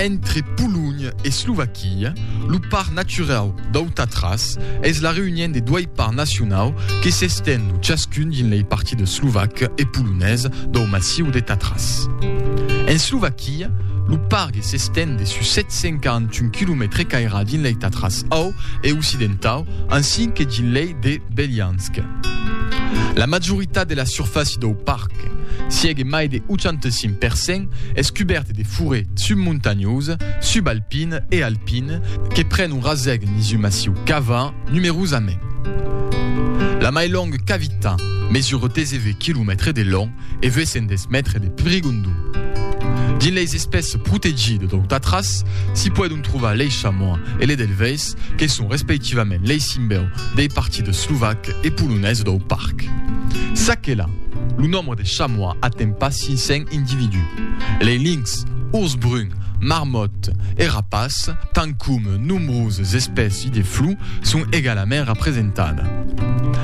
Entre Polonha e Slovaquia, lo Parc Naturau dau Tatras es la reünion de doai parcs nacionau que s'estend lo chascun dins lei partidas slovac e polonés dau massiu de Tatras. En Slovaquia, lo pargue s'estend de sus 741 quilomètres e caira dins lei Tatras au e occidentau ansin que dins lei de Beliansk. La majoritat de la surfàcia dau parc, siègue mai de 85 per cent, es cubèrte de foret submontanhós, subalpin e alpin que pren un rasèg nisu massiu qu'ava numerosament. La mai longa cavita mesura 19 quilomètres de long e 810 mètres de prigondon. Dins leis espèces protegidas dau Tatras s'i poidon trovar lei chamois e le delvais, Alemands, que son respectivament lei simbèu dei partides slovac e polonés dau parc. S'aquela, lo nombre de chamois aten pas 500 individus. Lei linx, urs brun, marmòt e rapaç, tant coma nombroses espèci de flou son egalament rapresentada.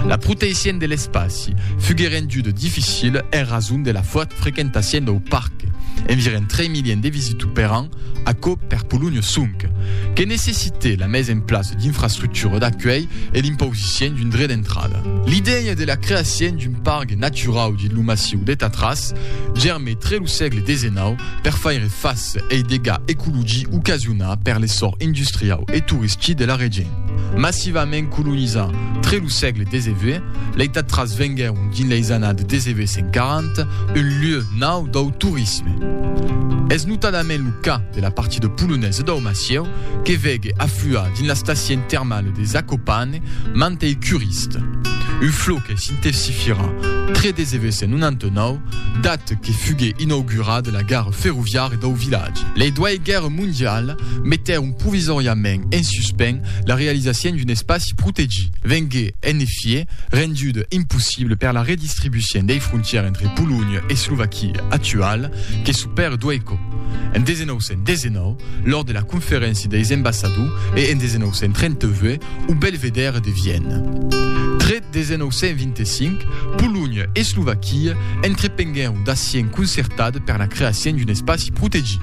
La proteissien de l'espaci fugue rendude dificile en rason de la fòrt frequentassien dau parc, enviren 3 miliens de visitu per an, Aquò per Polonio sonque que necessite la mesa en plaça d'infrastructura d'acuelh e l'impausicion d'un dret d'entrada. L'idèia de la creacion d'un pargue naturau dins lo massiu de Tatras germe tre lo sègle desenau per faire face ei dega ecologi ocasionà per l'essor industriau e touristi de la region. Massivament colonizà tre lo sègle xix, lei Tatras venguèron dins leis annadas 1940 un lieu Nau dau torisme. Es notadament lo cas de la partie de Polonais e dau Massieu que vege afluar dins la stacien termale de Zakopane mantei curist. Un flou que s'intesifira tre desevés en 99, dat que fugue inaugurada la gara ferroviària dau vilatge. Lei doai guèrre mondiale metèron provisòriament en suspens la realisacien d'un espaci protegit. Vengue En efièt, renduda impossibla per la redistribucion dei frontièrs entre Polonha e Slovaquia actuala, que çò per Dueiko. En 1919, lors de la Conferéncia deis Embassadors e en 1938, au Belvedere de Viena. Tre 1925, Polonha e Slovaquia entrepenguèron d'accion concertat per la creacion d'un espaci protegit.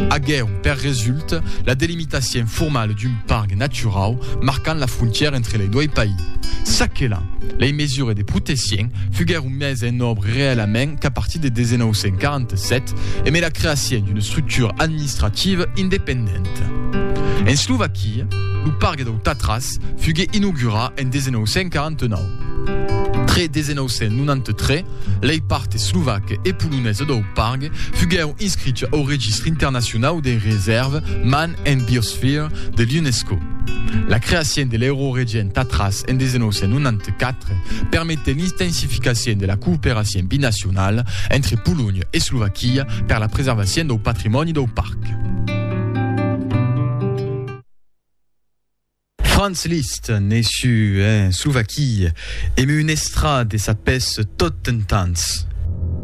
Aguèron per resulta la delimitacion L'estacion formala d'un parc naturau marcant la frontièra entre lei dois país. Çaquelà, lei mesures de proteccion fuguèron mèses en òbra reèlament qu'a partir de 1947 e mai la creacion d'una estructura administrativa independenta. En Slovaquia, lo parc dau Tatras fugué inaugurat en 1949. Tre 1993 Lei part eslovac e polonesa dau parc fuguèu inscricha au Registr internacionau dei resèrve Man and Biosphere de l'UNESCO. La creacien de l'Euroregen Tatras en 1994 permetèt l'intensificacion de la cooperacion binacionala entre Polonha e Slovaquia per la preservacion dau patrimòni dau parc. Franz Liszt, né su en Slovaquia, emé un estrad e sa pes tot dentans.